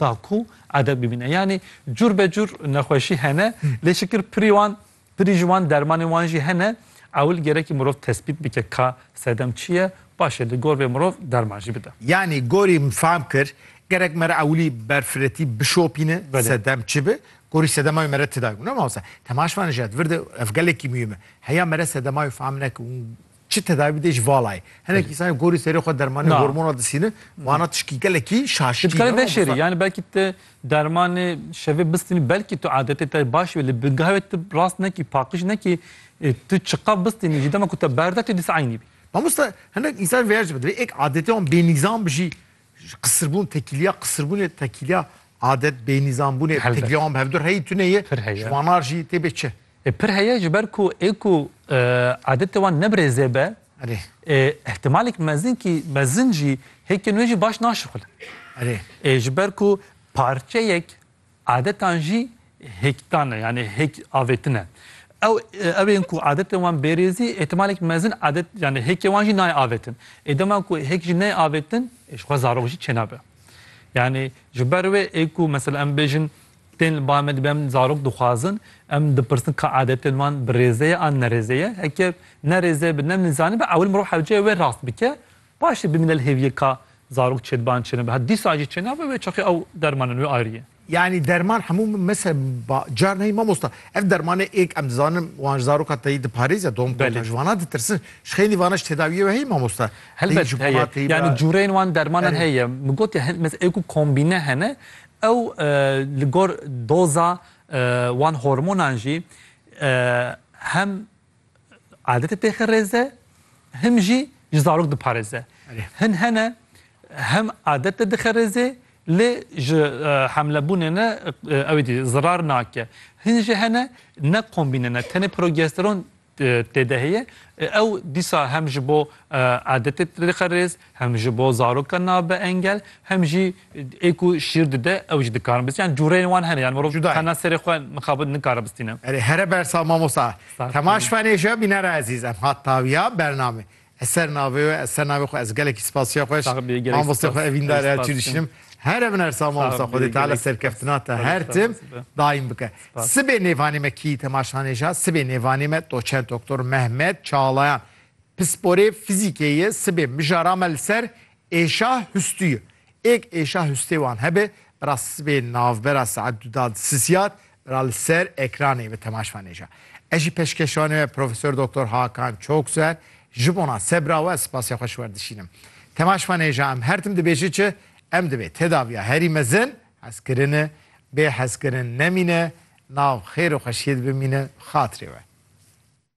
da ku edeb bibîne. Yanî cûr be cûr nexweşî hene lê şikir pirî wan pirî ji wan dermanên wan jî hene. Ewil gerekî mirov tespît bike ka sedem çi ye paşê li gor vê mirov derman jî bide. Yanî gorî min fam kir gerek me re ewilî berfiretî bişopîne sedem çi bi gorî sedema wê me re ti dayî. Ûna mamosta temaşvanê ji edvir de ev gelekî muhîm e. Heya me re sedema wê fam neke û Çi tedavî dê ji vala ye. Hinek însanên gorî serê xwe dermanê Na. hormona disînin, vana tişkî gelekî şaşkî Ti dikarî ne. veşerî yanî belkî ti dermanê şevê bistînî belkî tu adetê te baş be lê bi geh ve tu rast nekî paqij nekî ê tu çiqaf bistînî jî dema ku te berde tu dîsa eynî bî. Mamosta hinek însan vêya jî bibe divê êk adetê wan bênîzam bi jî Ji qisirbûn tekîliya qisirbûnê, tekîliya adet, bênîzambûnê, Helbet. tekîliya wan bi hevdur heyî tune ye, Pir heye. ji wanar jî tê bê çi? E, Pir heye ji ber ku ê ku e, adetê wan ne bi rêzê be, Erê, e, îhtimalek mezin kî mezin jî hêkên wê jî baş naşixulin. erê. E, ji ber ku parçeyek Adetan jî hêktan e yanî hêk avêtin e. Ew ew ên ku adetên wan bêrêzî îhtimalek mezin adet yanî hêkê wan jî nayê avêtin. Ê dema ku hêk jî neyê avêtin ê ji xwe zarok jî çênabe. Yanî ji ber wê ê ku mesela em bêjin tên li bavê me dibe em zarok dixwazin em dipirsin ka adetên wan bi rêze ye an nerêze ye. Heke nerêze bi ne min zanî be ewil mirov hewceyê wê rast bike Paşê bimîne li hêviyê ka zarok çêdiban çêne bi hev dîsa jî çêne bi wê çaxê ew derman in wê ayrî ye. Yanî derman hemû min mese ba car neyê mamosta. Ev dermanê êk em dizanin wan ji zaroka teyî diparêze dom ku Belê. ji wanan ditirsin. Ji xênî vanan ji tedawiyê we heye mamosta? Teyî Helbet ji heye. bona teyî bi Yanî cureyên wan dermanan Erê. heye. Min got ya hin mes ê ku kombîne hene ew li gor doza wan hormonan jî hem Adetê pêxê rêz e, him jî ji zarok diparêze. Hin hene hem adet de dixe rêzê lê ji hemlebûnê ne ew dî zirar nake. Hin jî hene ne kombîne ne tenê progesteron tê de heye. Ew dîsa hem ji bo adetê dixe rêz Hem ji bo zarokan nabe engel, hem jî ê ku şîr dide ew jî dikarin bistînin. Yani cûreyên wan hene. Yani mirov tena serê xwe mixabin nikare bistîne. Erê here bersa mamosta. Temaş fenê jî ya bînera ezîz. Em hat tawiya bername. Ez ser navê wê, ez ser navê xwe, ez gelekî spas çiya xweş mamostê xwe evîndarê her çî dişînim. Here bin ersa mamosta xwedê teala serkeftina te her tim daîm bike. Sibê nêvanê me kî temaş hanê jî ya, sibê nêvanê me doçent doktor Mehmet Çalayan. Pisporê fizîkê yê sibê mijara me li ser êşa hustû ye. Êk êşa hustê wan hebe, bira sibê navbera saet du da di sisiyat, bira li ser ekranê bi temaşva nêja. Ez jî peşkeşvanê me Profesor Doktor Hakan Çokser ji bona sebra we spasê xwe ji wer dişînim. Temaşva nêja em her tim dibêje çi, em dibê tedaviya herî mezin, hezkirin e, bê hezkirin nemîne, nav xêr û xweşiyê de bimîne bi xatirê we.